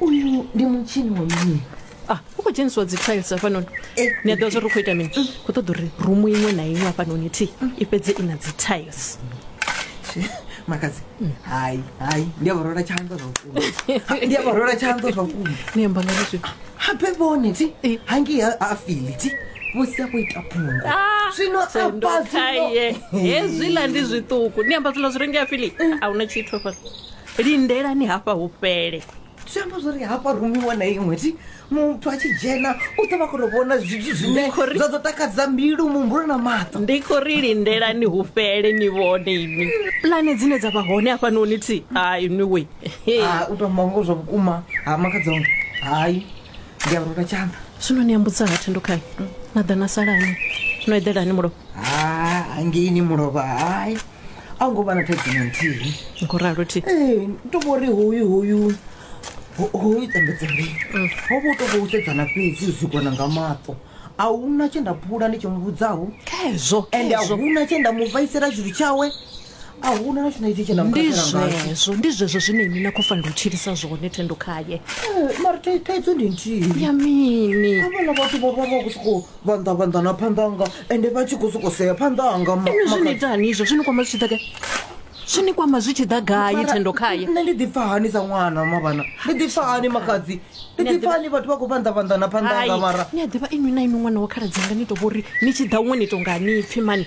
uyu ndi mutshini wa mini ah u khou dzhenisiwa dzi tiles hafhanoni ni a ḓivha zwori u khou ita mini khou ṱoḓa uri rumu iṅwe na iṅwe hafhanoni thi i fhedze i na dzi tiles makadzi hai hai ndi a vharola tshanḓa zwa vhukuma ndi a vharola tshanḓa zwa vhukuma ni amba nga zwi habe vhone thi hangi ha ha fili thi musi a khou ita phungo zwino afha zwino sendokaye hezwiḽa ndi zwiṱuku ni amba zwiḽa zwi rengea fili a huna tshithu hafhano lindelani hafha hu fhele zwi amba zwori hafha rumiwa na iṅwe ti muthu a tshi dzhena u ḓo vha khou tou vhona zwithu zwine zwa ḓo takadza mbilu muhumbulo na maṱo ndi khou ri lindelani hu fhele ni vhone ini pulane dzine dza vha hone hafhanoni ti hai niwe ah, u tou mongo zwa vhukuma ha makadzonga hai ndi a rula tshanḓa zwino ni ambudza ha thendokhai na ḓa na salani no eḓelani mulovha ha ah, hangeini mulovha hai a hu ngo vha na thaidzo na nthihi ni khou ralo thi ee to vho ri hoyu hoyu ho- hoyu tambedza uri ho vha u tou vha u sedzana fhedzi u sikwana nga maṱo a huna tshe nda phula ndi tshi mu vhudzaho khezwo ende a khezwo huna tshe nda mu vhaisela tshithu tshawe a huna na tshina itsho tshe nda mu ndi khakhela ngatsho zwezwo ndi zwezwo zwine ini na khou fanela u tshilisa zwone thendo khaye Eh, mara thai- thaidzo ndi nthihi ya mini havhala vhathu vho vha vha khou sokou vhanḓa vhanḓa na phanḓa anga ende vha tshi khou sokou sea phanḓa anga ma- inwi zwi ni makhadzi. ita hani izvo zwi ni kwama zwi tshi ḓa gai zwi ni kwama zwi tshi ḓa gai Mara, thendo khaye nṋe ndi ḓipfa hani sa ṅwana mavhana ndi ḓipfa hani makhadzi ndi Nṋe ḓipfa ḓi- hani vhathu vha khou vhanḓa vhanḓa na phanḓa anga mara ni a ḓivha inwi na inwi ṅwana wa khaladzi anga ni to vhori ni tshi ḓa huṅwe ni to nga ni pfhi mani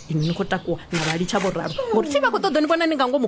inwi ni khou takuwa na vha litsha vho ralo ngori thi vha khou ṱoḓa ni vhona ni nga ngomu